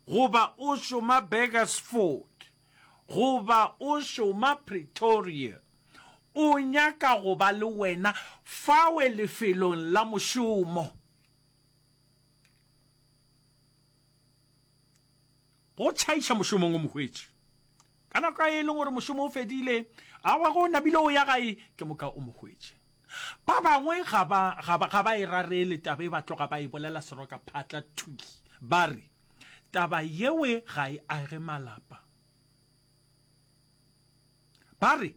Goba o šoma Burgersfort. Goba o šoma Pretoria. O nyaka go ba le wena fawe lefelong la mošomo. Go tšhaiša mošomong o mohwetši. Ka nako ye e leng gore mošomo o fedile, awa ge o namile o ya gae, ke moka o mo hwetše. Ba bangwe ga ba, ga ba, ga ba e rarele taba ye, ba tloga ba e bolela seroka phatla thwi, ba re, Taba yewe ga e age malapa. Ba re,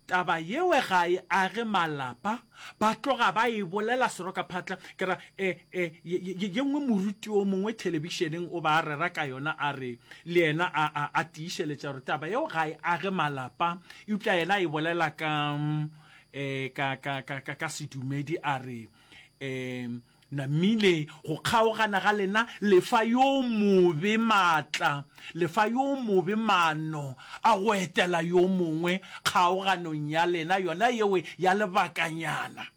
Taba yewe ga e age malapa, ba tloga ba e bolela serokaphatla. Ke ra, e, e, ye, ye, ye nngwe moruti o mongwe thelebišeneng o ba a rera ka yona, a re, le yena a, a, a tiišeletša gore taba yeo ga e age malapa, eupša yena a e bolela ka, e, ka, ka, ka, ka, ka sedumedi, a re, e, Namile go kgaogana ga lena le fa yo mobe maatla, le fa yo mobe maano a go etela yo mongwe kgaoganong ya lena yona yeo ya lebakanyana,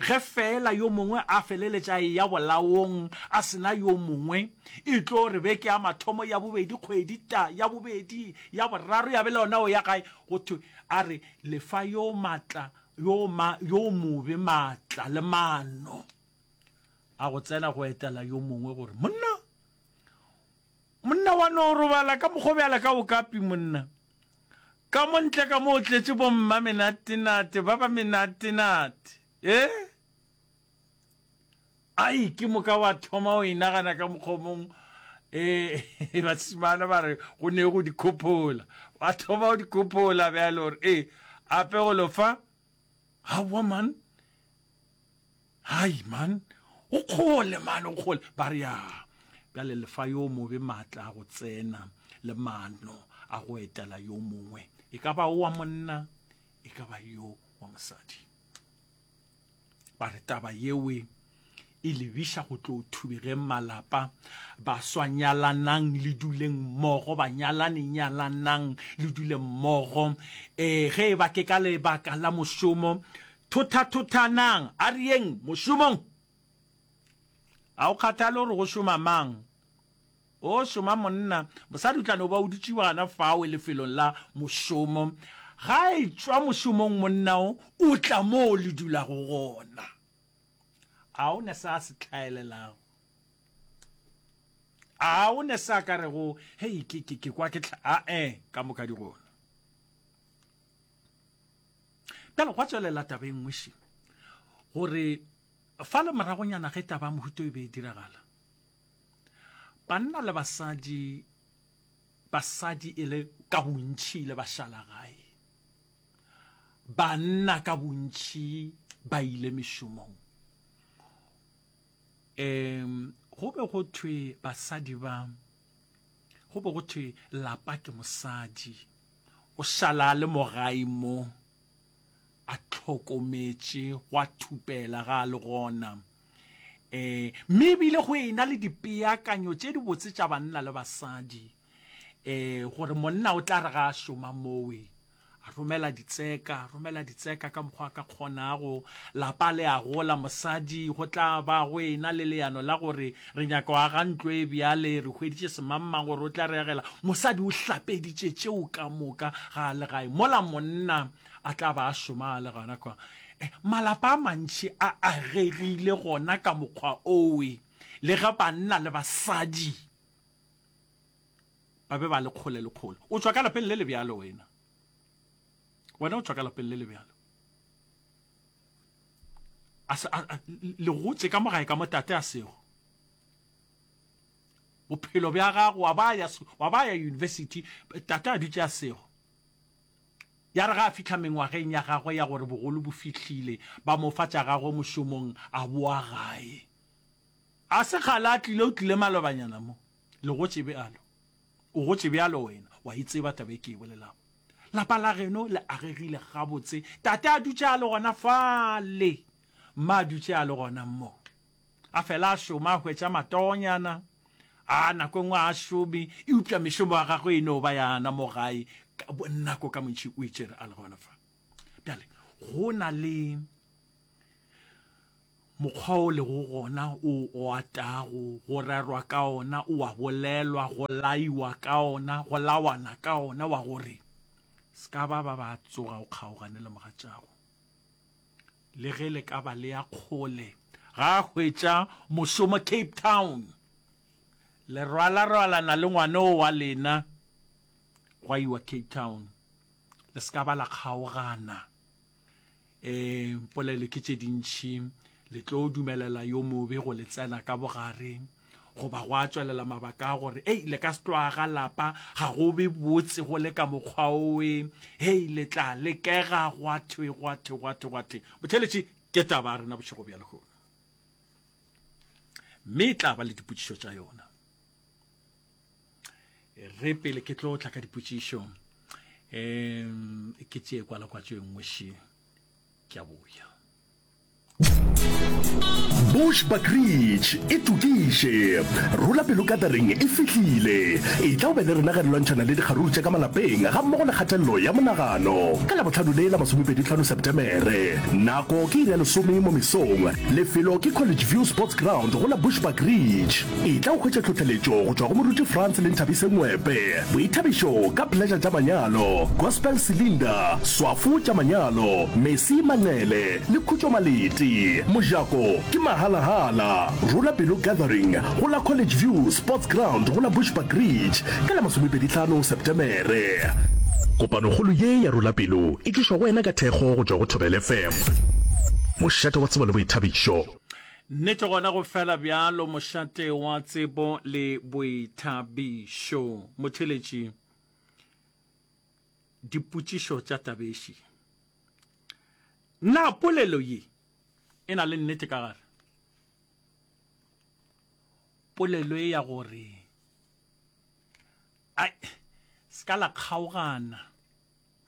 ge feela yo mongwe a feleletša a eya bolaong a se na yo mongwe, e tlo re beke ya mathomo, ya bobedi, kgwedi, ta, ya bobedi, ya boraro, ya be le yona o ya gae, go thwe a re le fa yo maatla yo ma yo mobe maatla le maano a go tsena go etela yo mongwe gore monna monna wa no robala ka mokgobjala ka okapi monna ka mo ntle ka mo o tletše bomma menatenate ba ba menatenate e ai ke moka wa thoma o inagana ka mokgomong um basimana ba re go ne go dikhophola wa thoma go dikhophola bjalo gore ee ape go lofa gawa man hai man o kgole man o kgole ba re ya bjale lefa yo mobe maatla a go tsena le maano a go etela yo mongwe e ka ba o wa monna e ka ba yo wa mosadi ba re taba yewe e lebiša go tlo thubegeng malapa baswa nyalanang le duleng mmogo banyalane nyalanang le dule mmogo um ge e ba ke ka lebaka la mošomo thothathothanang a re yeng mošomong ga o kgathale gore go šoma mang O šoma monna, mosadi o tla no ba o dutše gana fawe lefelong la mošomo. Ga a etšwa mošomong monna o o tla mo o le dulago gona. A o ne se a se hlaelelago? A o ne se a ka rego, Hei, ke, ke, ke kwa ke tlha. A-e, ka moka di gona. Bjale gwa tswelela taba e nngwe še gore fa le moragonyana ge taba mohuto e be e diragala Banna le basadi, basadi e le ka bontši le bašalagae, banna ka bontši ba ile mešomong. Um go be go thwe basadi ba, go be go thwe lapa ke mosadi, o šala a le mo gae mo, a tlhokometše, gwa thupela ga a le gona. E, mme ebile go e na le dipeakanyo tše di botse tša banna le basadi e, gore monna o tla re ga a šoma mowe a romela ditseka romela ditseka ka mokgwa ka kgonago lapa le a gola mosadi go tla ba go e na le leano la gore re nyaka go aga ntlo e bjale re hweditše semangmang gore o tla re agela mosadi o hlapeditše tšeo ka moka ga a le gae mola monna a tla ba a šoma a le gana kwa eh, malapa a mantši a agegile gona ka mokgwa owe le ge banna le basadi ba be ba le kgole le kgole o tswa ka lapeng le le bjalo wena wena o tswa ka lapeng le le bjalo le gotse ka mogae ka motate a sego bophelo bja gago wa ba ya university tate a dutše a sego Ya re ge a fihla mengwageng ya gagwe ya gore bogolo bo fihlile, ba mo fa tša gagwe mošomong, a boa gae. A se kgale a tlile, o tlile malobanyana mo. Le gotše bjalo. O gotše bjalo wena, wa e tseba taba e ke e bolelago. Lapa la geno le agegile gabotse, Tate a dutše a le gona fale, Mma a dutše a le gona mo. a fela a šoma a hwetša matonyana a nako engwe a šome eupša mešomo ya gagwe e no ba yana mo gae ka bonako ka montši o itšere a le gona fa bjale go na le mokgwa o lego gona o o atago go rerwa ka ona o a bolelwa go laiwa ka ona go lawana ka ona wa gore se ka ba ba ba tsoga o kgaogane le mogatšago le ge le ka ba le ya kgole ga a hwetša mošomo cape town le rwalarwalana le ngwane o wa lena gwa iwa cape town le se ka ba la kgaogana um polelo ke tše dintšhi le tlo dumelela yo mobe go le tsena ka bogareng goba go a tswelela mabaka a gore ei le ka se tloaga lapa ga go be botse go le ka mokgwa oe hei le tla lekega gwa thwe gwa thwe gwa thwe gwa thwe botheletše ke taba a rena bošego bja lehono mme e tla ba le dipotšišo tša yona re pele ke tlo tla ka dipotšišo um ke tšee kwala kwa tšo e nngwe še ke a boya Bush Buckridge e tokiše. Rula pelo katering e fihlile. E tla o be le rena ge re lwantšhana le dikgaruru tša ka malapeng ga mmogo le kgatelelo ya monagano. Ka Labohlano le la masomepedi-tlhano Sepetemere. Nako ke iri ya lesome mo mesong. Lefelo ke College View Sports Ground go la Bush Buckridge. E tla o hwetša tlhohleletšo go tšwa go Moruti Frans le Nthabise Ngwepe, boithabišo ka Pleasure tša manyalo, Gospel Cylinder, Swafo tša manyalo, Mercy Manqele, Le Khutšo Malete, Mojako, ke mahala-hala. Rula Pelo Gathering, go la College View Sports Ground go la Bushbuck Ridge, ka la masomepedi tlhano Septemere. Kopanokgolo ye ya Rula Pelo e tlišwa go wena ka thekgo go tšwa go Thobela FM, mošate wa tsebo le boithabišo. Nnete gona go fela bjalo, mošate wa tsebo le boithabišo. Motheletši, Dipotšišo tša Tabeši. Na polelo ye e na le nnete ka gare? Polelo e ya gore ai ska la kgaogana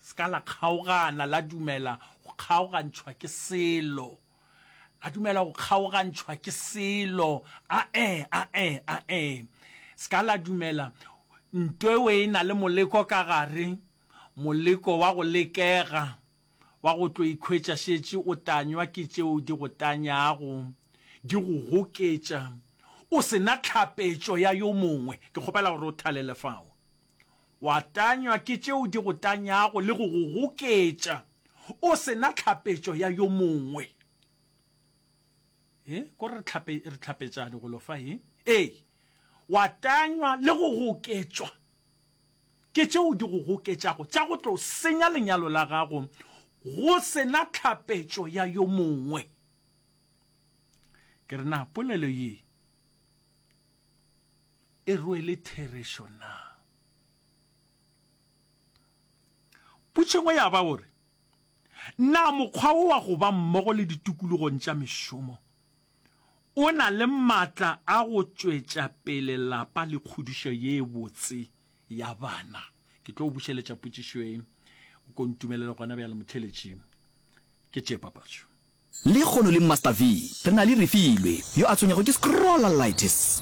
ska la kgaogana la dumela go kgaogantšhwa ke selo la dumela go kgaogantšhwa ke selo a e a e a e ska la dumela nto e na le moleko ka gare Moleko wa go lekega wa go tlo ikhwetša šetše o tanywa ke tšeo di go tanyago, di go goketša, o se na tlhapetšo ya yo mongwe. Ke kgopela gore o thalele fao. Wa tanywa ke tšeo di go tanyago le go go goketša, o se na tlhapetšo ya yo mongwe. Ee, ko re tlhapetšane golo fa, ee. Ee, wa tanywa le go goketšwa. Ke tšeo di go goketšago tša go tlo senya lenyalo la gago go se na tlhapetšo ya yo mongwe. Ke re na polelo ye e rwele therešo na? Potšo engwe ya ba gore, Na mokgwa wo wa go ba mmogo le ditokologong tša mešomo o na le matla a go tšwetša pele lapa le kgodišo ye botse ya bana. Ke tlo go bušeletša potšišo ye, o ko ntumelele gona bjale motheeletši. Ke tše papatšo. Lehono le Master V, re na le Refilwe, yo a tshwenyago ke scrollitis.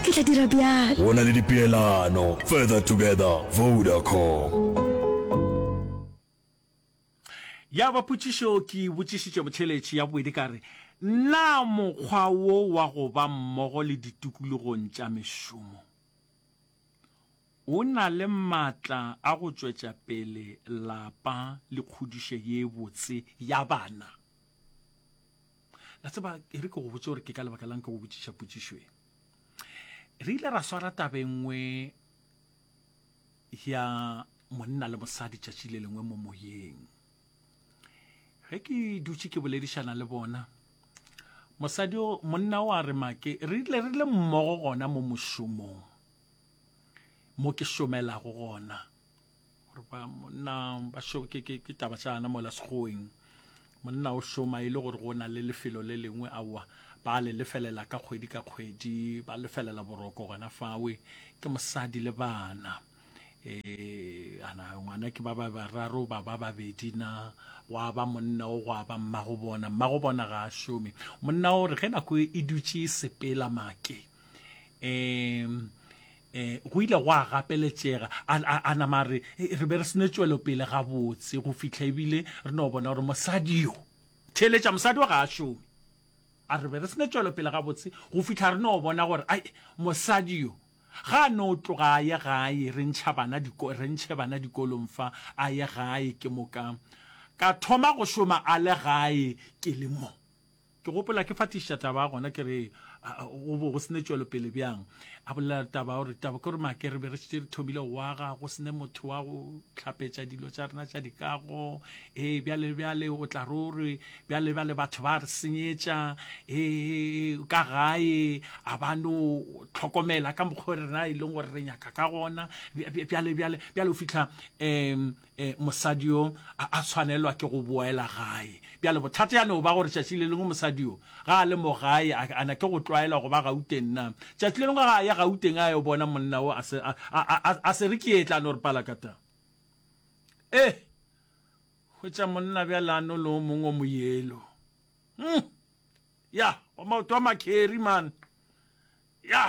Ke tla dira bjalo. Go na le dipeelano, Further Together, Vodacom. Ya ba potšišo ke e botšišitše botheeletše ya bobedi ka re, Na mokgwa wo wa go ba mmogo le ditokologong tša mešomo o na le matla a go tšwetša pele lapa le kgodišo ye botse ya bana? La tseba, e re ke go botše gore ke ka lebaka la'ng ke go botšiša potšišo ye. re ile ra swara tabe nngwe ya monna le mosadi tšatši le lengwe mo moyeng ge ke dutše ke boledišana le bona mosadi monna o a re make re ile re le mmogo gona mo mošomong mo ke šomelago gona gore ba monna ba šo ke ke ke taba tsa ana mola segoeng monna o šoma e le gore go na le lefelo le lengwe aowa ba le lefelela ka kgwedi ka kgwedi ba lefelela boroko gona fawe ke mosadi le bana eh ana ngwana ke ba ba bararo ba ba babedi na gwa ba monna o gwa ba mmago bona mmago bona ga a šome monna o re ge nako e dutše e sepela make um eh go ile go a gapeletšega a nama re e, re be re sene tšwelo pele ga botse go fihla ebile re no bona gore mosadi yo theletša mosadi o ga a šome a re be re sene tšwelo pele ga botse go fihla re no bona gore ai mosadi yo ga a no tloga a ye gae re ntšha bana diko re ntšhe bana dikolong fa a ye gae ke moka ka thoma go šoma a le gae ke le mo Ke gopola ke fatišiša taba ya gona ke re go bo go sene tšwelopele bjang. A bolela taba gore taba ke gore make re be re šetše re thomile go aga, go sene motho wa go tlhapetša dilo tša rena tša dikago. Ee, bjale bjale o tla ro re bjale bjale batho ba re senyetša ee ka gae a ba no tlhokomela ka mokgwa rena e leng gore re nyaka ka gona bjale bjale bjale o fitlha um E, mosadi yo a, a tshwanelwa ke go boela gae. Bjale bothata ya no ba gore tšatši le lengwe mosadi yo ga a le mo gae, a, a na ke go tlwaela go ba Gauteng na. Tšatši le lengwe ga a ya Gauteng a yo bona monna wo, a se, a, a, a, a se re ke ye tla no re palakata. E, hwetša monna bjale a no le o mongwe o moyelo. Hm, ya, wa maoto a makheri man. Ya.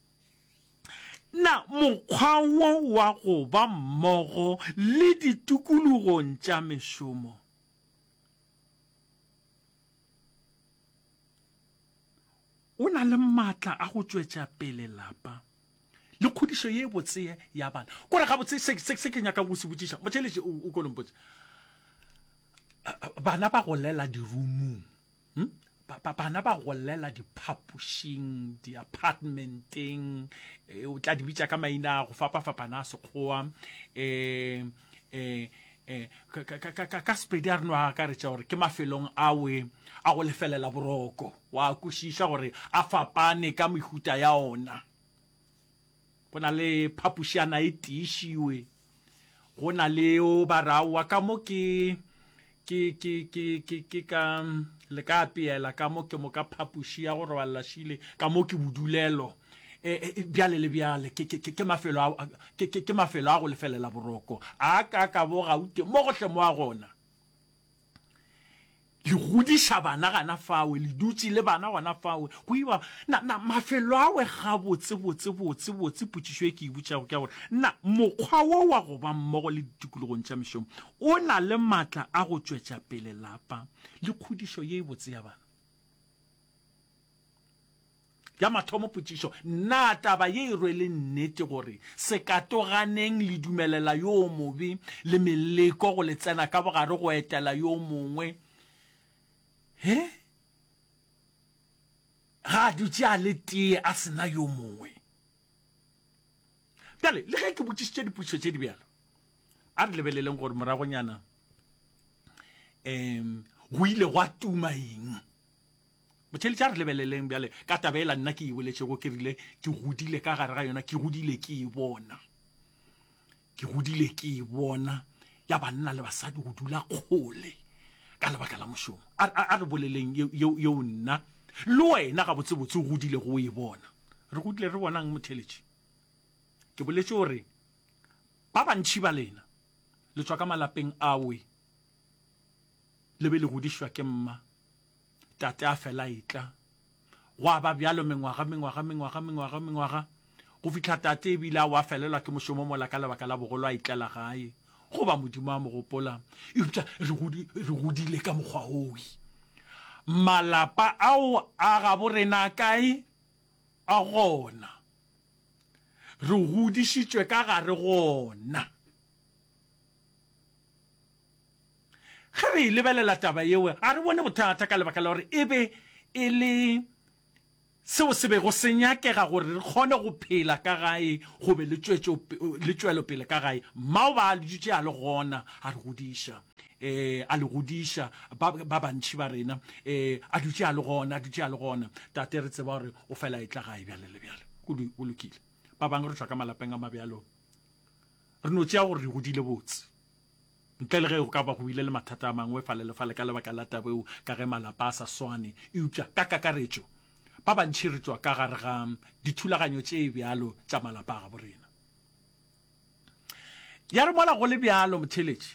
Na mokgwa wo wa go ba mmogo le ditokologong tša mešomo o na le maatla a go tšwetša pele lapa le kgodišo ye botse ya bana? Gore gabotse se ke nyaka go se botšiša motšheletše o ko lompotše, bana ba golela dirumung. hmm? bana ba golela diphapošing di-apartmenteng eh, o tla di bitsa ka maina go fapa-fapana a sekgowa um eh, eh, eh, ka sepedi a re no a akaretša gore ke mafelong awe a go lefelela boroko wa kwešiša gore a fapane ka mehuta ya ona go na le phapušana e tiišiwe go na le o ba ra wa ka mo ke ke ke ke ke ke ka le ka apeela ka mo ke mo ka phapuši ya go robalela šile ka mo ke bodulelo e, e, e, bjale le bjale ke mafelo ke mafelo a go lefelela boroko a ka ka bo gaute mo gohle mo a gona le godiša bana gana fawe, le dutše le bana gona fawe, go iwa na, na mafelo awe gabotse, botse, botse, botse, potšišo e ke e butšago ke ya gore, na mokgwa wo wa go ba mmogo le ditikologong tša mešomo o na le matla a go tšwetša pele lapa le kgodišo ye e botse ya bana? Ya mathomo potšišo, Na taba ye e rwele nnete gore sekatoganeng le dumelela yo mobe le meleko go le tsena ka bogare go etela yo mongwe ge ga a dutše a le tee a sena yo mongwe? Bjale, le ge ke botšišitše dipotšišo tše di bjalo, a re lebeleleng gore moragonyana um go ile gwa tuma eng. Botheeletša, re lebeleleng bjale ka taba ela nna ke e boletšego, ke rile ke godile ka gare ga yona, ke godile ke e bona, ke godile ke e bona ya banna le basadi go dula kgole ka lebaka la mošomo. A re boleleng yeo nna le wena gabotsebotse o godile go e bona. Re godile re bonang motheeletši? Ke boletše gore ba bantši ba lena le tswa ka malapeng awe Le be le godišwa ke mma. Tate a fela a etla. Gwa ba bjalo mengwaga, mengwaga, mengwaga, mengwaga, mengwaga, go fihla tate e bile a wa felelwa ke mošomo mola ka lebaka la bogolo a itlela gae, goba Modimo a mo gopola. Eupša re godi, re godile ka mokgwa woi. Malapa ao a gabo rena a kae? A gona. Re godišitšwe ka gare go ona. Ge re e lebelela taba yeo, ga re bone bothata ka lebaka la gore e be e le seo se bego se nyakega gore re kgone go phela ka gae go be le tšwelopele ka gae. Mao ba a le dutše a le gona a re godiša, ee, a le godiša, ba bantši ba rena, ee, a dutše a le gona, a dutše a le gona. Tate, re tseba gore o fela e tla gae bjale le bjale. Go lokile. Ba bangwe re tšwa ka malapeng a mabjalo, re no tšea gore re godile botse. Ntle le ge go ka ba go bile le mathata a mangwe fale le fale ka lebaka la taba eo ka ge malapa a sa swane, eupša ka kakaretšo ba bantši re tšwa ka gare ga dithulaganyo tše bjalo tša malapa a gabo rena. Ya re mola go le bjalo, motheeletši,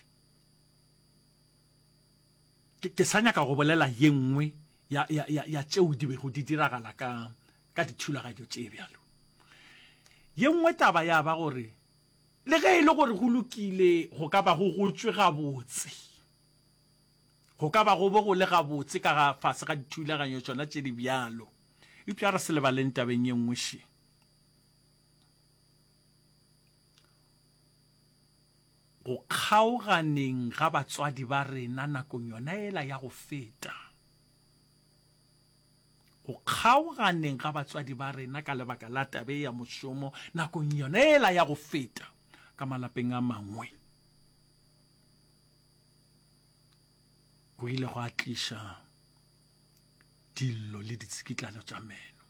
ke, ke sa nyaka go bolela ye nngwe ya, ya, ya, ya tšeo di bego di diragala ka, ka dithulaganyo tše bjalo. Ye nngwe taba ya ba gore Le ge e le gore go lokile go ka ba go gotšwe gabotse, go ka ba go bo go le gabotse ka ga fase ga dithulaganyo tšona tše di bjalo, eupša re se lebaleng tabeng ye nngwe še. Go kgaoganeng ga batswadi ba rena nakong yona yela ya go feta, Go kgaoganeng ga batswadi ba rena ka lebaka la taba ye ya mošomo nakong yona yela ya go feta ka malapeng a mangwe go ile go a tliša dillo le ditsikitlano tša meno.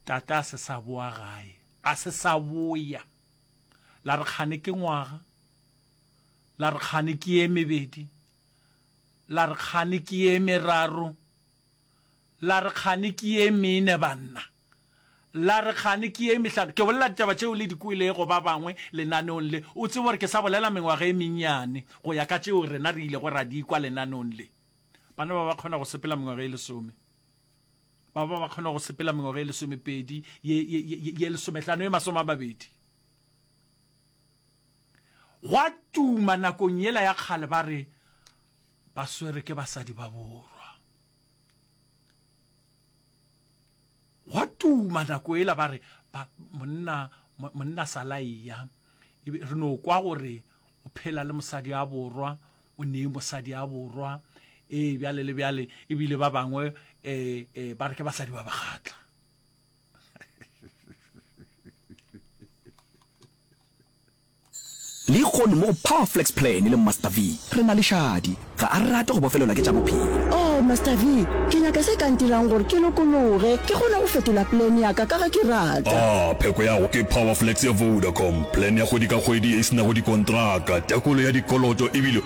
Tata a se sa boa gae, a se sa boya. La re kgane ke ngwaga, la re kgane ke ye mebedi. La re kgane ke ye meraro, la re kgane ke ye mene, banna. La re kgane ke ye mehlano. Ke bolela ditaba tšeo le di kwelego ba bangwe lenaneong le. O tsebe gore ke sa bolela mengwaga e mennyane go ya ka tšeo rena re ilego ra di kwa lenaneong le. Bana ba ba kgona go sepela mengwaga e lesome. Ba ba ba kgona go sepela mengwaga e lesomepedi, ye, ye, ye, ye lesomehlano, ye masome a mabedi. Gwa tuma nakong yela ya kgale ba re ba swere ke basadi ba borwa. Gwa tuma nako ela ba re ba monna monna salaia e re no kwa gore o phela le mosadi ya borwa o ne mosadi ya borwa e bjale le bjale ebile ba bangwe eh, eh ba re ke basadi ba bagatla. Lehono mo go Power Flex Plan le Master V, re na le šadi. Ga a rate go bofelelwa ke tša bophelo. Oh, Master V, ke nyaka se ka ntirang gore ke lokologe, ke kgone go fetola plan ya ka ka ge ke rata. A pheko ya go ke Power Flex ya Vodacom, plan ya kgwedi ka kgwedi e se nago dikontraka, tekolo ya dikoloto e bile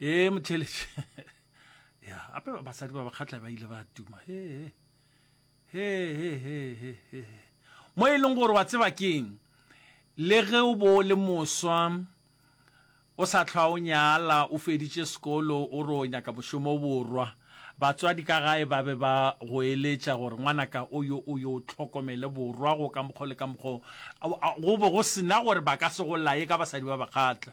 ee motheletše ya ape basadi ba bakgatla ba ile ba tuma he he he he he he mo e leng gore wa tseba keng le ge o bo le moswa o sa tlhwa o nyala o feditše sekolo o re o nyaka mošomo borwa batswadi ka gae ba be ba go eletša gore ngwanaka o yo o yo tlhokomele borwa go ka mokgwa le ka mokgwa go be go sena gore ba ka se go laye ka basadi ba bakgatla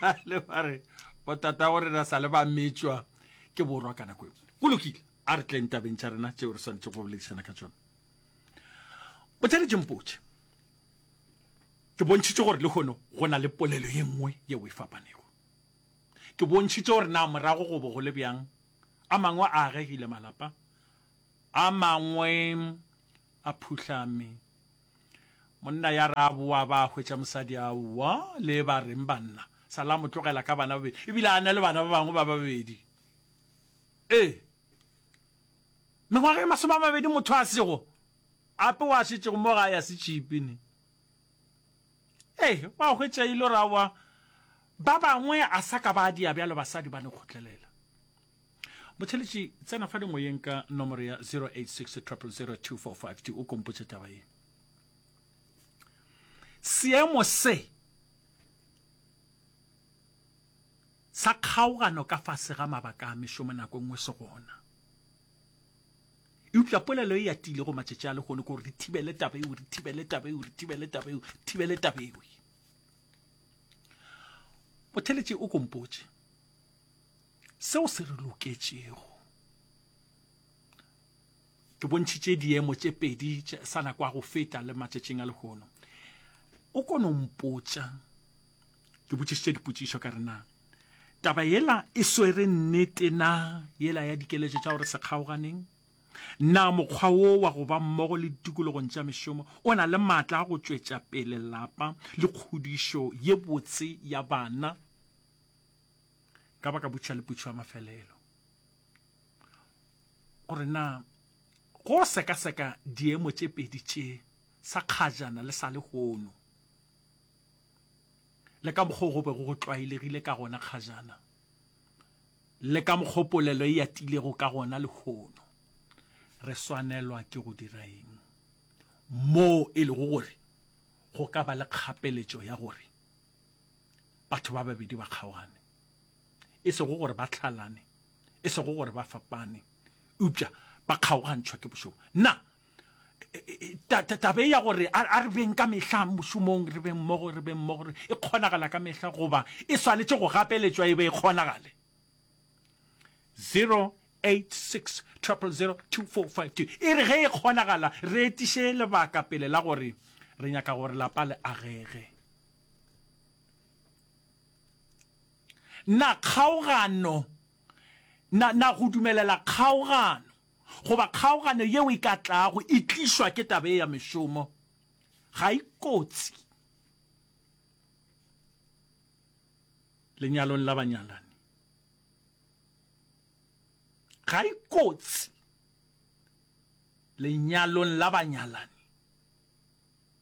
ba le ba re botata gore na sa le ba metswa ke borwa ka nako e go lokile a re tleng tabeng tša rena tšeo re swanetse go boledišana ka tsone bothale jempotše ke bontšhitše gore le kgono go na le polelo ye nngwe yeo e fapanego ke bontšhitše gore na morago go bo go le bjang a mangwe a agegile malapa a mangwe a phuhlame Monna ya re a boa ba hwetša mosadi a wa le ba reng banna sa la mo tlogela ka bana babedi ebile a na le bana ba bangwe ba babedi ee mengwaga e masome a mabedi motho a sego ape wa šetšego mo ga ya se tšhipi ne ee wa hwetša ile ra wa ba bangwe a sa ka ba dia bjalo basadi ba ne kgotlelela botheletši tsena fa dingweyeng ka nomoro ya 0860002452 o kompotše taba ye seemo se sa kgaogano ka fase ga mabaka a mešomo nako e nngwe se gona eupša polelo e atile go matšatši a lehono gore re thibele taba eo re thibele taba eo re thibele taba eo thibele taba eo botheletše o kompotše seo se re loketšego ke bontšhitše diemo tše pedi sa na kwa go feta le matšatšing a lehono o kono mpotša ke botšišitše dipotšišo ka rena taba yela e swere nnete na yela ya dikeletšo tša gore se kgaoganeng na mokgwa wo wa go ba mmogo le ditikologong tša mešomo o na le maatla a go tšwetša pele lapa le kgodišo ye botse ya bana ka baka butšha le putšho ya mafelelo gore na go sekaseka diemo tše pedi tše sa kgajana le sa lehono le ka mokgwa go be go tlwaelegile ka gona kgajana le ka mokgwa polelo e yatilego ka gona lehono re swanelwa ke go dira eng moo e lego gore go ka ba le kgapeletšo ya gore batho ba babedi ba kgaogane e sego gore ba tlhalane e sego gore ba fapane eupša ba kgaogantšhwa ke bošomo nna e, e, e, tabe ya gore a re beng ka mehla mošomong re beng mmogo re beng mmogo e kgonagala ka mehla goba e swanetše go gapeletšwa e be e kgonagale 0 86 000 2452 e re ge e kgonagala re etiše lebaka pele la gore re nyaka gore lapa le agege Na kgaogano, na, na go dumelela kgaogano, goba kgaogano yeo e ka tlago e tlišwa ke taba ye ya mešomo, ga e kotsi lenyalong la banyalani? Ga e kotsi lenyalong la banyalani?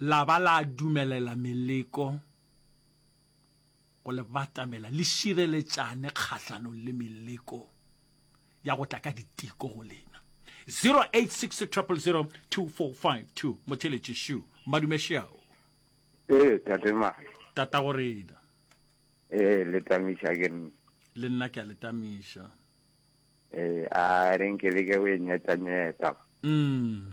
La ba la dumelela meleko go le batamela, le šireletšane kgahlanong le meleko ya go tla ka diteko go lena. 0860002452 Motheletši Shu, Madume Shao. Ee, Tate Mane. Tatagorena. Ee, le tamiša ke nna. Le nna ke a le tamiša. Ee, a re nke le ke o e nyetanyeta. Mm.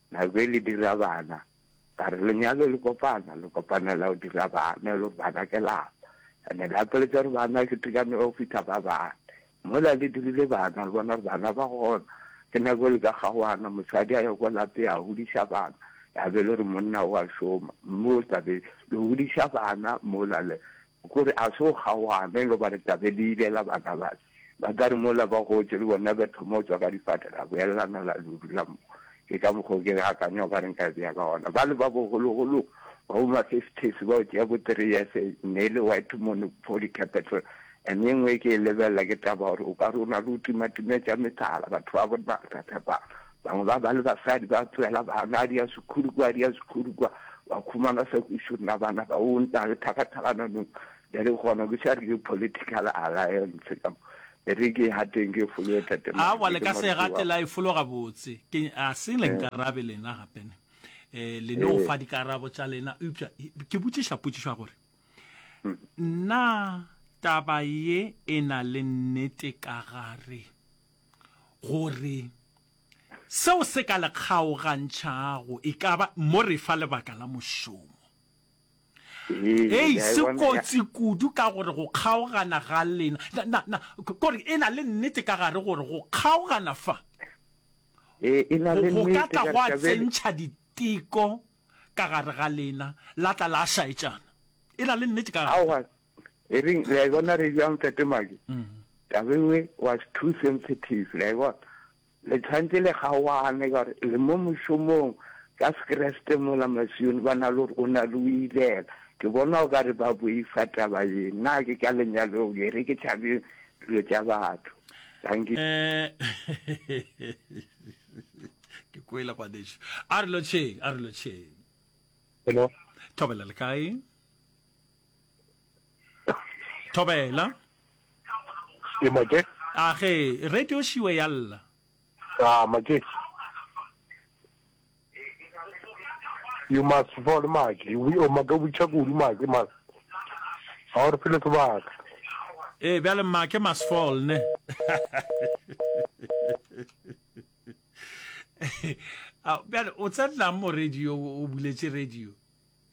Na be le dira bana? Ba re, Lenyalo le kopana, le kopanela go dira bana, e le gore bana ke lapa. And-e le apeletša gore bana ke tekano ya go fihla ba bane. Mola le dirile bana, le bona gore bana ba gona. Ke nako e le ka kgaoganyo, mosadi a ya kwa lapeng, a godiša bana. Ya be e le gore monna o a šoma. Mme o tla be le godiša bana mola le. Gore a se o kgaogane le ba re tla be le ilela bana bale. Ba tla re mola ba gotše le bona be thoma go tšwa ka difate ra boelelana la le dula mo. Ke ka mokgwa o ke re akanya o ka re nka e beya ka gona. Bale ba bogologolo ba bo ma fifties ba o tšea bo three years ne e le white monopoly capital. And e ngwe e ke e lebelela ke taba ya gore o ka re o na le go timatima tša methala batho ba bo nna re sa tshepana. Bangwe ba ba le basadi ba tsoela bana dia sekhuru kwa dia sekhuru kwa, ba khumana sa kwišo nna bana ba o nta le thakathalana no bere gona ke sa rile political alliance ka mo bere ke ha teng ke folo e tate ma awa le ka se gate la e folo ga botse ke a se le nka rabe lena gape ne eh le no fa di karabo tša lena upša ke botšiša potšišwa gore nna taba ye e na le nnete ka gare gore seo se ka le kgaogantšhago e ka ba mo re fa lebaka la mošomo. Hei, se kotsi kudu ka gore go kgaogana ga lena kore e na le nnete ka gare gore go kgaogana fa go ka tla go a tsentšha diteko ka gare ga lena la tla la šaetšana. E na le nnete ka gare. e re le a bona re jang fetemake tabengwe was too sensitive le a bona le tshwanetse le gawane ka gore le mo mošomong ka sekreste mola masione ba na le gore o na le o ilela ke bona o ka re ba boifa taba ye nna ke ka lenyalong e re ke tšhabe dilo tša batho thank you eh, ke kwele gwaneso a re lotšheng a re lotšheng hello thobela le kae Thobela. Ke make. A ge radio shiwe ya lla. Ah make. You must fall make. We o make we check ulu make man. Ha re phele sebaka. Eh bjale make must fall ne. Bjale o tsetla mo radio o buletše radio.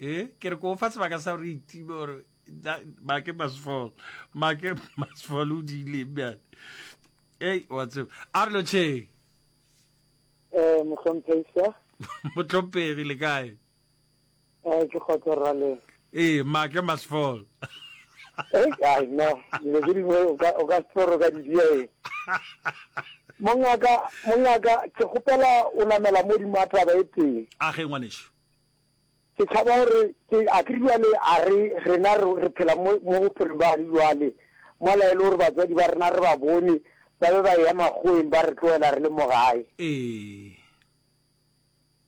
e ke re ko fa sebaka sa gore itibe gore make must fall make must fall o diileng bjale ei wa tseba a re lo cheng eh mohlomphesa motlhomphegi le kae eh ke kgotsa rra le ee make must fall eh ai no le ke dingwe o ka o ka tsoro ka didia e mongaka mongaka ke gopela o namela mo di mataba e teng a ge ngwaneso Ke tšhaba gore ke, a ke re bjale a re, rena re, re phela mo, mo bophelong bja gare bjale, mola e le gore batswadi ba rena re ba bone, ba be ba eya makgoeng ba re tlogela re le mo gae. Ee.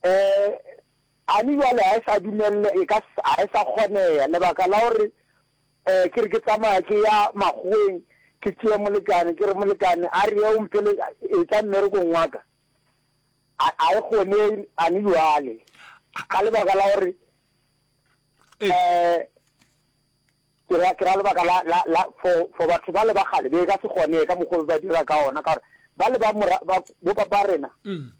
Ee, Annie bjale ga e sa dumelelwa, e ka se, ga e sa kgonega, lebaka la gore, ee, ke re ke tsamaya ke ya makgoeng, ke tšea molekane, ke re, molekane, a re ye o mphele, etša mmerekong wa ka. A, a e gone ane bjale? Ka lebaka la gore, Ee. eh, ke ra, ke ra lebaka la, la, la, for, for batho ba le ba kgale, be e ka se gone ka mokgwa o ba dira ka ona, ka gore ba le ba mora, ba, bo ba ba rena, Mm.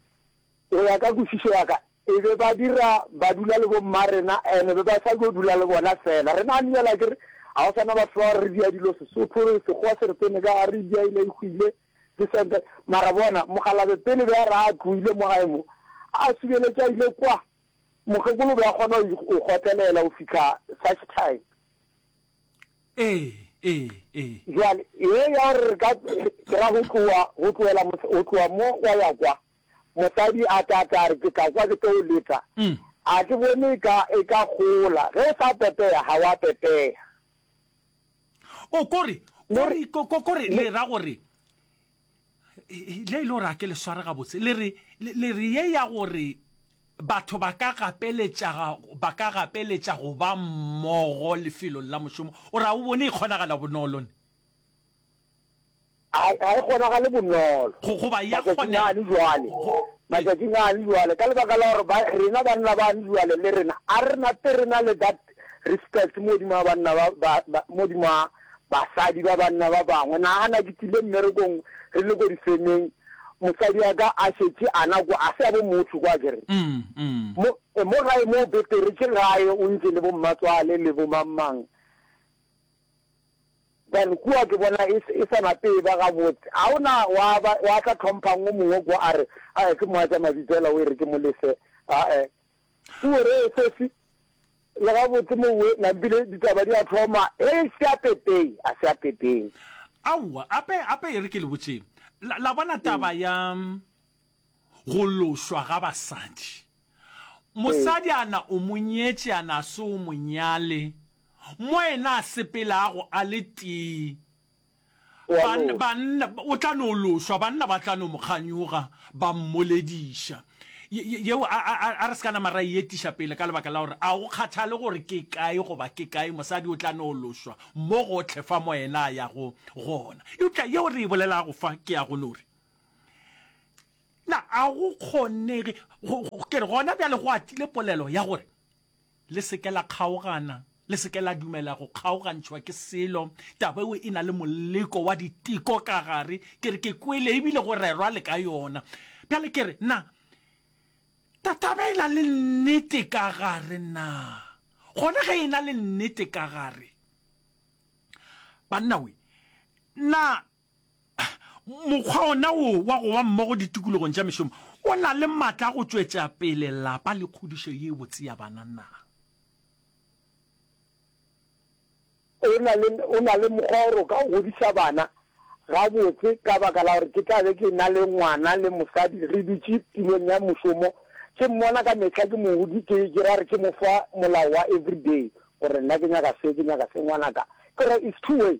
go ya ka kwešišo ya ka, e be ba dira, ba dula le bomma rena, ene be ba sa yo dula le bona fela. Rena ane bjale akere, ga go sana batho ba re dia dilo Sesotho, Sekgowa se re tsene ka gare, dia e ne e hwile. Ke sente. Mara bona, mokgalabje pele be a re a tloile mo gae mo, a subeletše a ile kwa, mokgekolo o be a kgona go go kgotlelela go fihla such time. Ee, ee, ee. Bjale, ye ya gore re ka, ke ra go tloga, go tlogela mos-, go tloga mo wa ya kwa, mosadi a tla, a tla re, Ke tla kwa ke tlo o leta. A ke bone eka e ka gola. Ge o sa pepea, ga wa pepea. o kore kore ko- ko- kore le ra gore e- le ile gore a ke le sware gabotse le re le le re ye ya gore batho ba ka gapeletša ga- ba ka gapeletša go ba mmogo lefelong la mošomo o ra o bone e kgonagala bonolo ne Ga, ga e kgonagale bonolo, Go, goba ya matšatšing kgonega. ane bjale, Go, go, ee. matšatšing ane bjale, ka lebaka la gore ba, rena banna bane bjale le rena, a re na te rena le that respect modima banna ba, ba, ba, modima basadi ba banna ba bangwe. Nagana ke tsile mmerekong re le ko difemeng, mosadi wa ka a šetše ana kwa, a se ya bo motho kwa kere. Mm, mm. Mo, eh, mo gae mo betere ke gae o ntše le bo mmatswale le bo mang mang. Then kua ke bona e, e sa nape e ba gabotse. Ga o na wa ba, wa tla tlhomphang o mongwe kua a re, Ae, ke moatša mabitso hela o e re ke mo lefe. Ae. Kua re, Sesi, le gabotse mowe, nampile ditaba di a thoma. Hei, se a pepei, a se a pepei. Aowa, gape, gape e re ke le botšeng. La, la bona taba ya. Go lošwa ga basadi. Mosadi a na o mo nyetše a na a se o mo nyale, mo yena a sepelago a le tee, ban, banna, o tla no lošwa, banna ba tla no mo kganyoga, ba mmolediša. Ye, ye, yeo, a, a, a re se ka nama ra e etiša pele, ka lebaka la gore a go kgathale gore ke kae goba ke kae, mosadi o tla no lošwa mo gohle fa mo yena a yago gona. Eupša yeo re e bolelago fa ke ya go no re, Na a go kgonege ke re gona bjale go atile polelo ya gore le seke la kgaogana, le seke la dumela go kgaogantšhwa ke selo, taba eo e na le moleko wa diteko ka gare, ke re ke kwele ebile go rerwa le ka yona. Bjale ke re na taba e na le nnete ka gare na? Gona ge e na le nnete ka gare, banna we, na Mokgwa ona wo wa go ba mmogo ditikologong tša mešomo o na le matla a go tšwetša pele lapa le kgodišo ye botse ya bana na? O na le, o na le mokgwa gore o ka godiša bana gabotse ka baka la gore ke tla be ke na le ngwana le mosadi re dutše tulong ya mošomo, ke mmona ka mehla, ke mo godi, ke, ke ra gore ke mo fa molao wa everyday gore nna ke nyaka se, ke nyaka se. Ngwanaka, ke gore it's two way.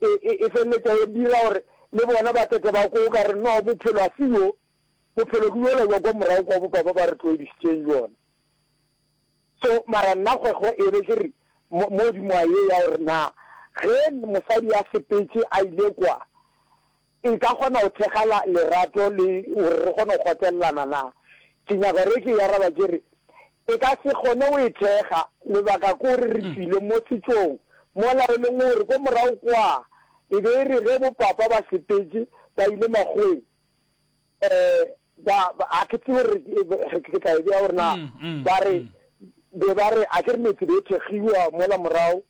e, e, e feleletša e dira gore le bona ba tete ba ko o ka re no bophelo a se yo bophelo ke yola jwa kwa morago kwa bopa ba ba re tloedisitseng jona so mara nna kgwego e be ke re mo godimo a ye ya gore na ge mosadi a sepetse a ile kwa Nka kgona go thekga la, lerato le, gore re kgone go kgotlelelana na? Ke nyaka gore ke e araba ke re, E ka se kgone go e thekga. Lebaka ke gore re tšwile mo setšong mola e leng gore ko morago kwa e be e re ge bopapa ba sepetše ba ile makgoweng, um ba, ga ke tsebe gore ke tla e bea gore na, ba re, be ba re a ke re metse be e thekgiwa mola morago,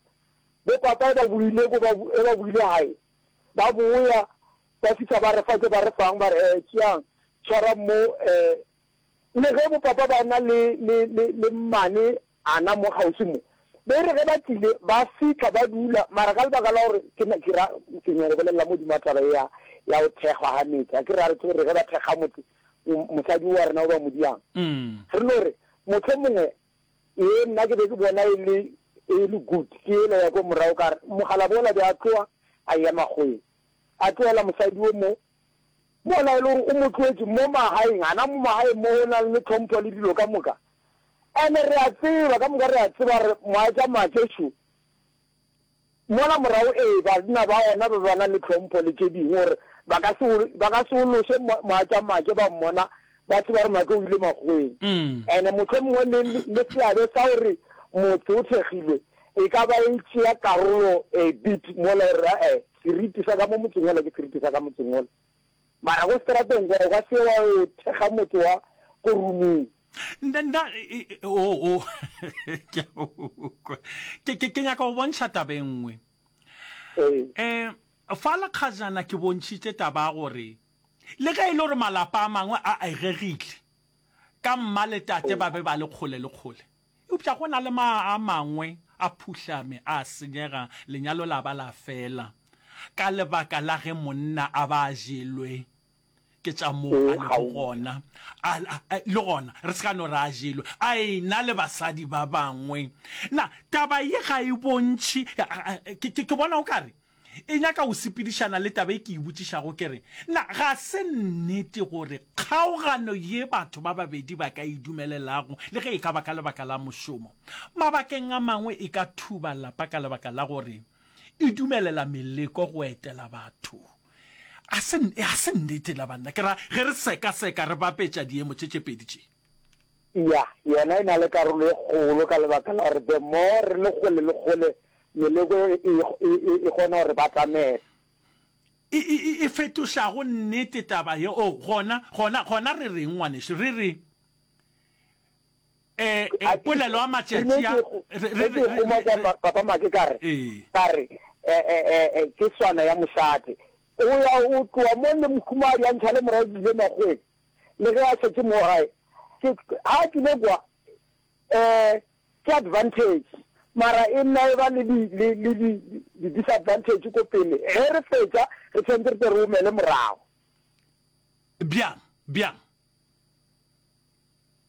bopapa e ba boile ko ba, e ba boile gae. Ba boya, ba fihla ba re fa tše ba re fang, ba re, Ee, tšeang, tshwarang mo. Ee, le ge bopapa ba na le, le, le, le mmane ana mo kgauswi mo, ba e re ge ba tlile, ba fihla ba dula, mara ka lebaka la gore ke, ke ra, ke nyaka go bolelela mo dima taba ye ya, ya go thekgwa ga metse, a ke re, a re tsebe gore ge ba thekga motse, mosadi o wa rena o ba mo diang, re no re, mohlomongwe Ee, nna ke be ke bona e le, e le good, ke yela ya ko morago ka re, mogalabo ola be a tloa a eya makgoweng, a tlohela mosadi o mo, mola e le gore o mo tloetše mo magaeng, a na mo magaeng mo go na le tlhompho le dilo ka moka. And-e re a tseba, ka moka re a tseba gore moatsamaake šo, Mola morago, ee, banna ba gona ba ba na le tlhompho le tše dingwe, gore ba ka se, ba ka se ološe moatšamatše ba mmona ba tseba gore Matlo o ile makgoweng. And mohlomongwe le, le seabe sa gore motse o thekgilwe e ka ba e tšea karolo a bit mola, gore, a-e, seriti sa ka mo motseng ola ke seriti sa ka motseng ola. Mara ko strateng kwa o ka se wa yo thekga motho wa ko roomong. Nda, nda, o, o, ke a go kwa. Ke, ke, ke nyaka go bontšha taba e nngwe. Ee. Um, fa lekgajana ke bontšhitše taba ya gore le ge e le gore malapa a mangwe a egegile ka mma le tate ba be ba le kgole le kgole, Eupša go na le ma a mangwe a phuhlame a senyega, lenyalo la ba la fela ka lebaka la ge monna a ba a jelwe ke tša moo a lego gona. A, a, a, le gona re se ka no re a jelwe a ena le basadi ba bangwe. Na taba ye ga e bontšhi? Ke, ke, ke bona o ka re E nyaka go sepedišana le taba e ke e botšišago, ke re, Na ga se nnete gore kgaogano ye batho ba babedi ba ka e dumelelago, le ge e ka ba ka lebaka la mošomo, mabakeng a mangwe e ka thuba lapa ka lebaka la gore e dumelela meleko go etela batho? Ga se nnete na banna? Ke ra ge re sekaseka, re bapetša diemo tše tše pedi tše. Ya, yona e na le karolo e kgolo ka lebaka la gore the more re le kgole le kgole meleko e, e, e, e, e kgona gore batamela. E, e, e, e fetošago nnete taba ye. O, oh, gona, gona, gona re reng, ngwanešu? Re re, e, e, polelo ya matšatši a, re, re, re, re, papa make ka re, ka re, e, e, e, e, ke swana ya mosadi. O ya o tloa mo le mohumadi a ntšha le morago dile magweng. le ge a šetše mo gae, ke, ha a tlile kwa, eh, ke advantage, mara e nna e ba le di, le, le di, di disadvantage ko pele, ge re fetša, re tshwanetse re tle re omele morago. Bjang? Bjang?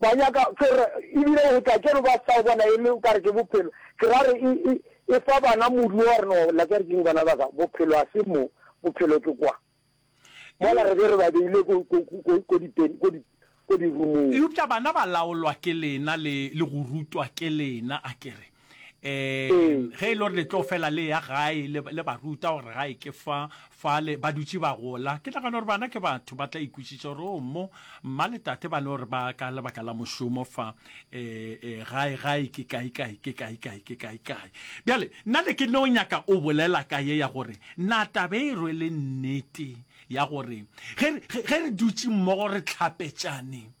Ba nyaka ke re, ebile o tla kere ba sa o bona e le o ka re ke bophelo. Ke ra re, e, e, e fa bana modu wa gore no, la kere keng bana ba ka, bophelo ga se mo, bophelo ke kwa. Mola re be re ba beile ko, ko, ko, ko dipeni, ko di, ko dirumong. Eupša bana ba laolwa ke lena le, le go rutwa ke lena, a ke re. um ge e le gore le tlo fela le ya gae le ba ruta gore gae ke fa fale ba dutse ba gola ke nagana gore bana ke batho ba tla ikwešiša gore o oh, mo mma le tate ba ne gore ba ka lebaka la mošomo fa um gae gae ke kae kae ke kae kae ke kae kae bjale nna le ke no nyaka o bolela ka ye ya gore na tabe e rwele nnete ya gore ge re dutse mmogo re tlhapetšane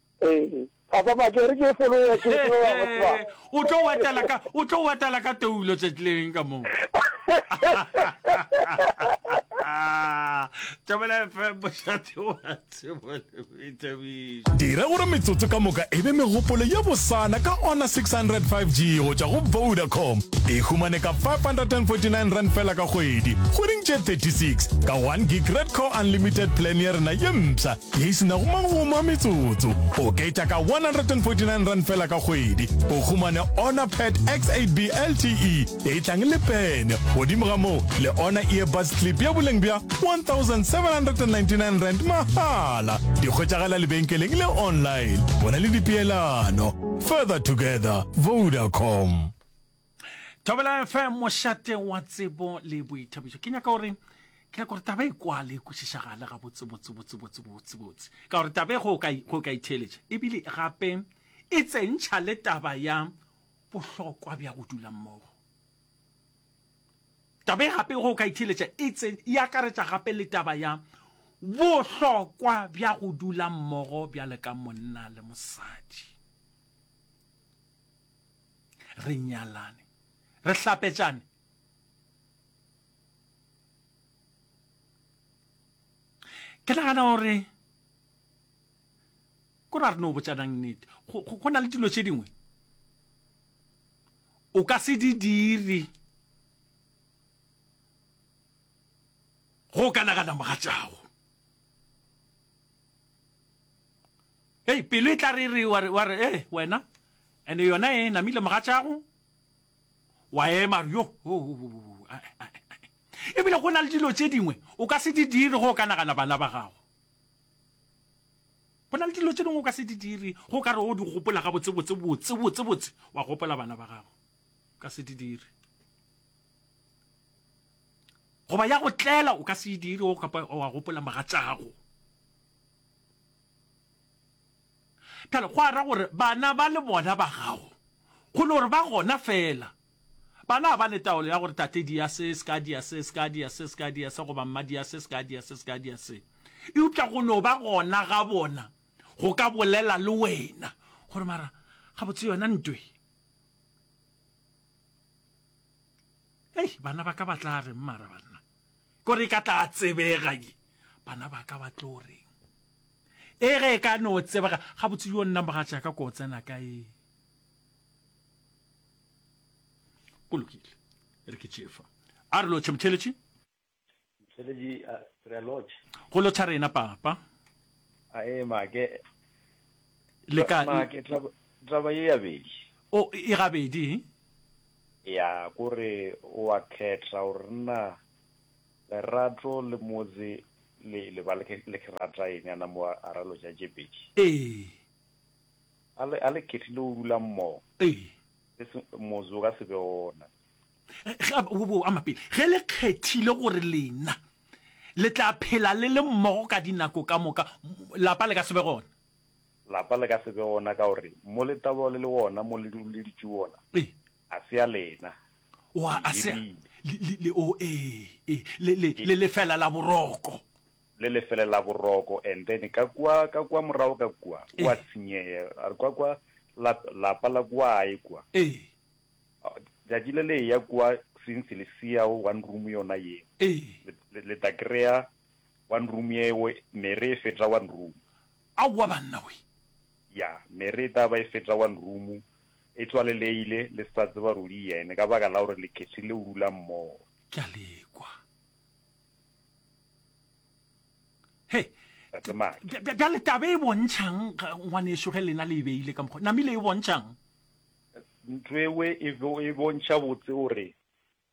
Ee, papa Maka, e re ke fologe ya ke fologe ya go tswa. O tlo wetela ka, o tlo wetela ka toulo tšetleng ka moo. Thobela FM, bošate wa tsebo le boithabišo. Dira gore metsotso ka moka e be megopolo ye bosana ka Honor 600 5G go tšwa go Vodacom. E humane ka R549 fela ka kgwedi, kgweding tše 36, ka 1 gig Red Core Unlimited plan ya rena ye mpsha. Ye e se nago magomo a metsotso. Oketša ka R149 feela ka kgwedi, o humane Honor Pad X8B LTE e tlang le pene, godimo ga moo le Honor Earbuds Clip ya boleng bja R1,799 mahala. Di hwetšagala lebenkeleng le online. Go na le dipeelano. Further together. Vodacom. thobela fm mošate wa tsebo le boithabišo ke nyaka gore ke nyaka gore taba e kwale e kwešišagale ga botsebotsebotsebotsebotsebotse ka gore taba e go ka itheeletša ebile gape e tsentšha le taba ya bohlokwa bja go dula mmogo taba e gape go ka itheeletša e tse e akaretša gape le taba ya bohlokwa bja go dula mmogo bjale ka monna le mosadi re nyalane re hlapetšane ke nagana gore ko ra re no botšanang nnete go na le dilo tše dingwe o ka se di dire go ka nagana mogatšago Hei, pelo e tla re e re, wa re, wa re, ee, wena, and yona e namile mogatšago, wa ema, re, yo, ho, ho, ho, ho, ho, ae, ae, ae. E bile go na le dilo tše dingwe o ka se di dire go o ka nagana bana ba gago. Go na le dilo tše dingwe o ka se di dire go o ka re o di gopola gabotse, botse, botse, botse, botse, wa gopola bana ba gago. O ka se di dire. Goba ya go tlela o ka se e dire go kapa wa gopola mogatšago. Bjale, go a ra gore bana ba le bona ba gago, go no re ba gona feela, bana ga ba ne taolo ya gore tate dia se, se ka dia se, se ka dia se, se ka dia se, goba mma dia se, se ka dia se, se ka dia se. Eupša go no ba gona ga bona go ka bolela le wena gore, Mara, gabotse yona ntwe. Hei, bana ba ka ba tla reng, mara banna? Ko re ka tla tsebega ye, bana ba ka ba tlo reng? E ge e ka no tsebega, gabotse yo nna mogatšaka ko tsena ka e. Go lokile, re ke tšefa. A re lotšhe, Motšheletši. Motšheletši, a re a lotšhe. Go lotšha rena, Papa. A e ma ke. Le ka. Ma ke tla tla ba ye ya bedi. O e gabedi. Ya, kore O a khetha gore na lerato le motse le le ba le ke rata eng a na mo a ralo ja je pedi. Ee. A le a le kethile go rula mmogo. Ee. E se motse o ka se be ona. Ge a bo bo ama pele. Ge le kgethile gore lena le tla phela le le mmogo ka dinako ka moka, lapa le ka se be gona. Lapa le ka se be gona ka gore mo letaba le le gona mo le duleditše gona ga se ya lena. Wa a se le le le o e e le le le lefela la boroko. Le lefele la boroko and then ka kwa ka kwa morago ka kwa wa tshenyega a re kwa kwa la lapa la kwa e kwa. Tšatši le le ya kwa since le siyago one room yona ye le tla kry-a One room yeo mere e feta one room. Aowa banna we. Ya mere e tla ba e feta one room. E tswaleleile le se sa tseba ruri yene ka baka la gore le kgethile ho rula mmogo. Ke a le kwa. He, Tate Maki. bja- bja- bjale tabe e bontšhang ga- ngwaneso ge lena le e beile ka mokgwa. Namile e bontšhang? Ntho ewe e bo- e bontšha botse gore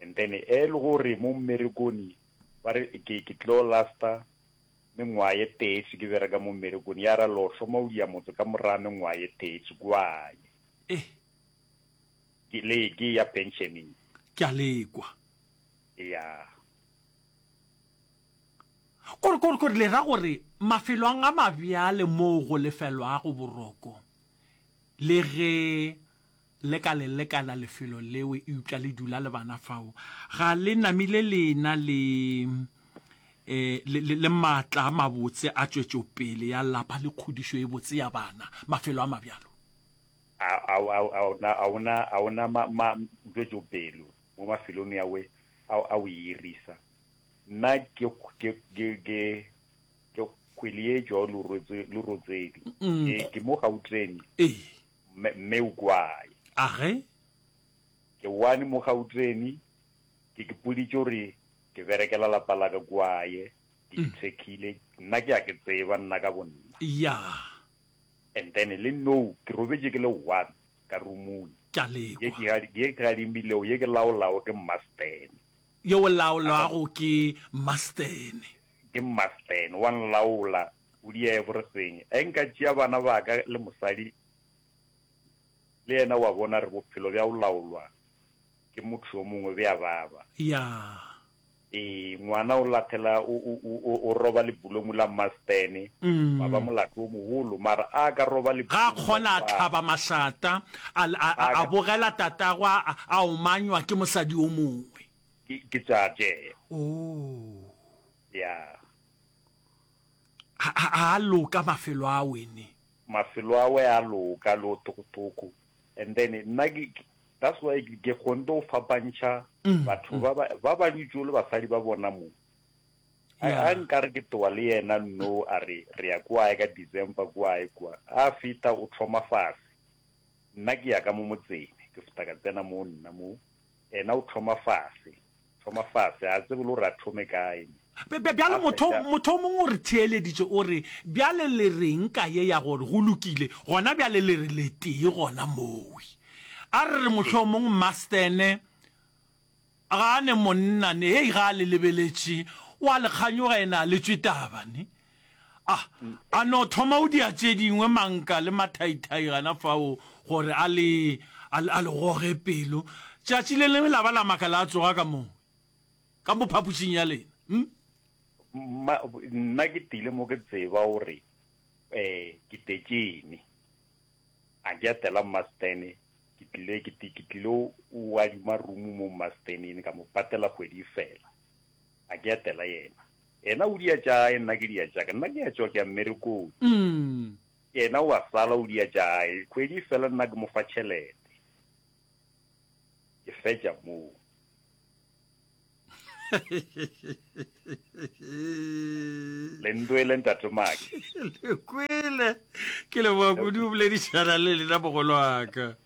And then ele gore mo mmerekoni ba re ke ke tlo lasta mengwaga ye teetši ke bereka mo mmerekoni ya ra lo hloma o dia motse ka moraga mengwaga ye teetši kwanye Eh. ke le ke ya pensioning Ke a lekwa. ya Kore kore kore le ra gore mafelong a mabjale moo go lefelwago boroko le ge Le ka le lekala lefelo leo eupša le dula le bana fao. Ga le namile le ena le, eh, le, le, le maatla a mabotse a tšwetšopele ya lapa le kgodišo e botse ya bana, mafelo a mabjalo. A, a, a, a, o na, a o na, a o na ma, ma, tšwetšopele mo mafelong ya we a, a o e irisa? Nna ke, ke, ke, ke, ke kgwele ye tšwa o le rotswe, le rotsedi. Ke, ke mo Gauteng. Ee. Mme, mme o kwae? A ge? Ke wane mo Gauteni, ke ke puditše gore ke berekela lapa la ka kwae, ke mm. ithekile, nna ke a ke tseba, nna ka bonna. Ya. And then le no, ke robetše ke le one, ka rumung. Ke a lekwa. Ye ke gadimilego, ye ke laolago ke mmastene. Ye o laolwago ke mmastene. Ke mmastene, wa nlaola, O diege gore seng. Ge nka tšea bana ba ka le mosadi le yena, o a bona, re bophelo bja go laolwa ke motho yo mongwe bja baba. Ya. Ee, ngwana o lathela, o, o, o, o, o roba lebulomu la mmastene, wa ba molato wo mogolo, mara a ka roba Ga a lebulomu la kgona a tlaba mosadi. mašata, a, l- a, a, A a ka- bogela tatagwe a, a- a omanywa ke mosadi yo mongwe. Ke, ke tša tšee. Oo. Ya. Ha, ha, ha a loka mafelo a wene. Mafelo a we a loka, le o tokotoko. And then, nna ke, ke, that's why ke, ke kgonte go fapantšha Mm, batho mm. ba ba, ba ba dutšo le basadi ba bona mo. A, Yeah. a nka re ke towa le yena no, a re, re ya kwae ka December kwae kwa. A feta o thoma fase. Nna ke ya ka mo motseng, ke feta ka tsena mo nna mo. Ena o thoma fase. Thoma fase. A tsebe le gore a thome kae ne. Bjale motho, motho o mongwe o re theeleditše, o re, Bjale le re'ng ka ye ya gore, Go lokile, gona bjale le re letee gona moo? A re re mohlomong Mastene ga a ne monna ne, hei, ga a le lebeletše, o a le kganyoga, ena a le tšwe taba ne. A a no thoma go dia tše dingwe, manka le mathaithai gana fao, gore a le, a le, a le goge pelo. Tšatši le lengwe la ba la makala a tsoga ka mowe, ka mo phapošing ya lena. Hm? Mma, nna ke tile mo ke tseba gore, eh, ke tetšene. A ke atela Mma Stene, ke tlile, ke, ke tlile o adima rumu mo Mma Stenene, ka mo patela kgwedi e fela. A ke atela yena. Yena o dia tša gae, nna ke dia tša ka. Nna ke a tšwa, ke ya mmerekong. Yena o a sala, o dia tša gae. Kgwedi e fela, nna ke mo fa tšhelete. Ke fetša moo. Le ntwele, Ntate Maki. Le kwele. Ke leboga kudu go boledišana le lena, mogolo wa ka.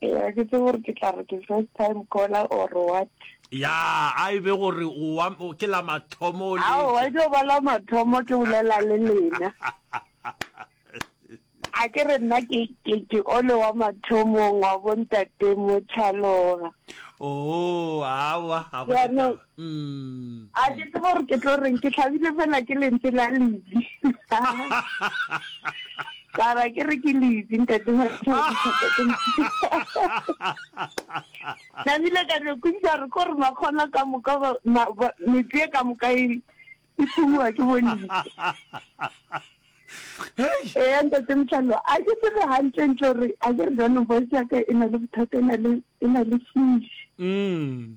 Eya, ke tsebe gore ke tla re ke first time caller or what. Ya, a e be gore o wa, o ke la mathomo o letša. Aowa, e tlo ba la mathomo ke bolela le lena. A ke re nna ke, ke, ke ole wa mathomong wa bo ntate Mochaloga. Oo, aowa, ga go Jaanong, A ke tsebe gore ke tlo reng, ke tlhabile fela ke lentswe la Lizzy. Ka ra ke re ke Lizzy, ntate Ka bile ka no kwešiša gore ko re makgona ka moka, metse e ka moka e e thumiwa ke bolitse ee ntate motlhalo a ke tsebe gantlentle gore a ke re jaanong voice yaka e na le bothata e na le fish mm.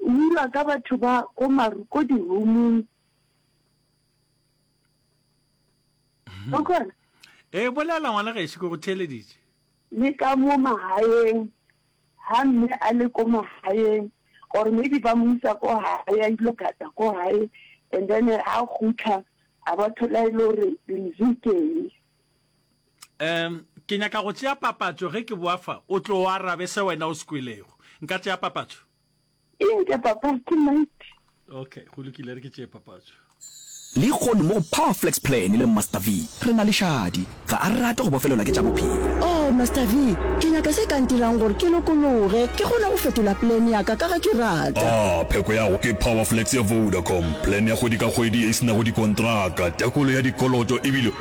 O dirwa ka batho ba ko maru ko di-roomong. O kgona? Ee, bolela ngwana gešo ke go theeleditše. Le ka mo magaeng, ga mme a le ko magaeng, or maybe ba mo isa ko gae, a ile gata ko gae, and then ga gutla, a ba thola e le gore lentswe keng. Um ke nyaka go tšea papatšo ge ke boa fa o tlo arabe se wena o se kwelego nka tšea papatšo. Eng ke papatso mate? Ok, go lokile, re ke tšee papatso. Lehono mo go Power Flex Plan le Master V, re na le šadi. Ga a rate go bofelelwa ke tša bophelo. Oh, Master V, ke nyaka se ka ntirang gore ke lokologe, ke kgone go fetola plan ya ka, ka ge ke rata. Ah, pheko ya go ke Power Flex ya Vodacom, plan ya kgwedi ka kgwedi ye e se nago dikontraka, tekolo ya dikoloto e bile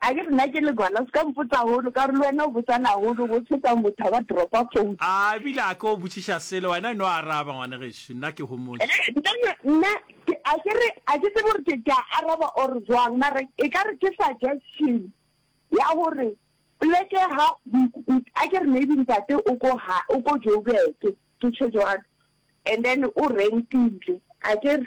A ke re na ke legwala? Seka mpotsa holo, ka gore le wena o botsana haholo, go tshwetsa motho a ba dropa phone. A ebile a ke o botšiša selo, wena e no araba ngwane gešo, nna ke homotše. Nna, nna, ke, a ke re, a ke tsebe gore ke, ke a araba or bjang, mara e ka re ke suggestion ya gore poleke ha, a ke re maybe ntate o ko ha, o ko Joburg, ke tjho jwalo, and then o rentile, a ke re,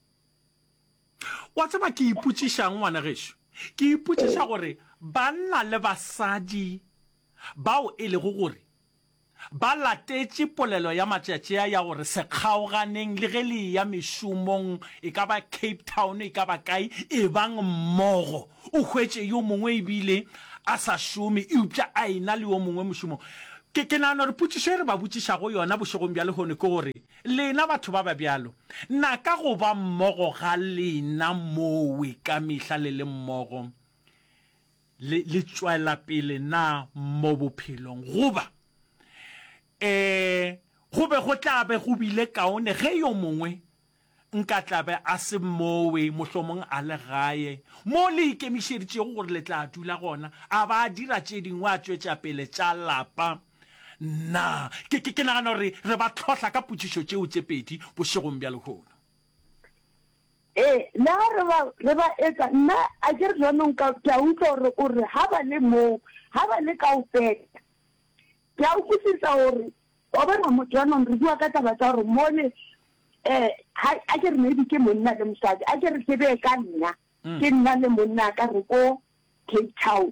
Wa tseba ke ipotšiša'ng, ngwana gešo? Ke ipotšiša gore banna le basadi bao e lego gore ba latetše polelo ya matšatši a ya gore se kgaoganeng le ge le eya mešomong, e ka ba Cape Town, e ka ba kae, ebang mmogo. O hwetše yo mongwe e bile a sa šome eupša a ena le yo mongwe mošomong. Ke, ke nagana gore potšišo e re ba botšišago yona bošegong bja lehono ke gore, Lena batho ba ba bjalo, na ka go ba mmogo ga lena mowe ka mehla le le mmogo le, le tšwela pele na mo bophelong? Goba, e, go be go tla be go bile kaone ge yo mongwe nka tla be a se mowe, mohlomong a le gae, mo le ikemišeditšego gore le tla dula gona, a ba a dira tše dingwe, a tšwetša pele tša lapa. Nna, ke, ke, ke nagana gore re ba tlhohla ka potšišo tšeo tše pedi bošegong bja lehono. Ee, le ga re ba, re ba etsa, nna, a ke re jaanong ka, ke a utlwa gore o re, ga ba le moo, ga ba le kaofela. Ke a utlwisisa gore, wa bona, mo, jaanong re bua ka taba tsa gore mole, um, ga, a ke re maybe ke monna le mosadi, a ke re ke bee ka nna, ke nna le monna ka re ko Cape Town.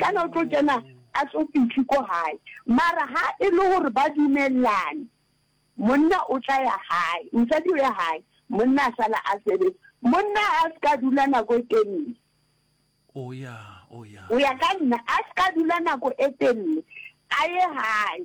Kana o tlo kena a tlo fihle ko gae. Mara ha e le gore ba dumelane, monna o tla ya gae, mosadi o ya gae, monna a sala a sebetsa. Monna a se ka dula nako e telele. Oh yeah, oh yeah. Go ya ka nna, a se ka dula nako e telele, a ye gae.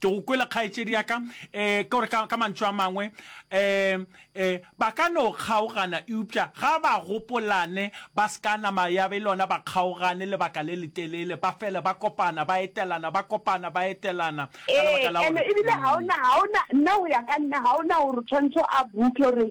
ke go kwele kgaetšedi ya ka um ke gore ka mantšu a mangwe um um ba ka no kgaogana eupša ga ba gopolane ba se ka nama ya be lona ba kgaogane lebaka le letelele ba fele ba kopana ba etelana ba kopana ba etelana ee ene ebile ga ona ga ona nna go ya ka nna ga ona gore tshwantsho a buke gore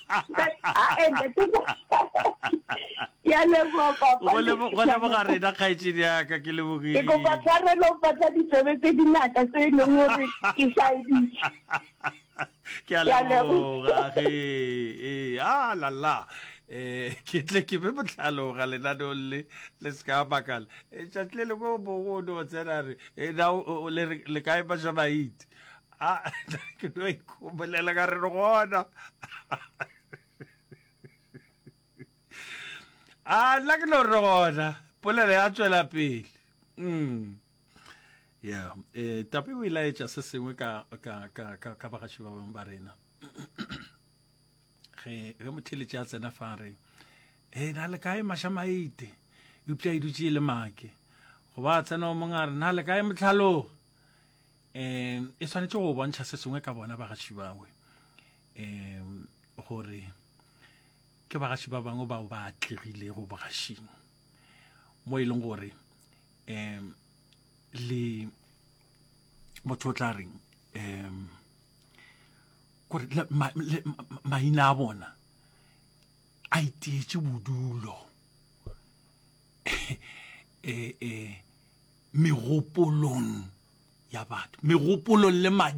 go leboga rena kgaetšedi yaka ke lebogile ke a leboga ge ee a lala um ke tle ke be botlhaloga lenaneo le le se ka makala tšatši le lengwe o mongwe o ne o tsena re le kae bašamaiti a ke no ikhomolela ka re re gona a nna ke no re gona polelo ya tswela pele mm yeah eh tapi o ilaetša se sengwe ka ka ka ka ka bagaši ba bang ba rena ge ge motheletše a tsena fa re e eh, na le kae mašamaite eupša e dutše e le make go ba tsena o mongare na le kae motlhalogo um e swanetše go bontšha se sengwe ka bona bagaši bawe um gore ke bagaši ba bangwe bao ba atlegilego bogašing mo e leng gore um le motho o tla reng um gore maina a bona a iteetse bodulo eh, eh, megopolong ya batho megopolong le madi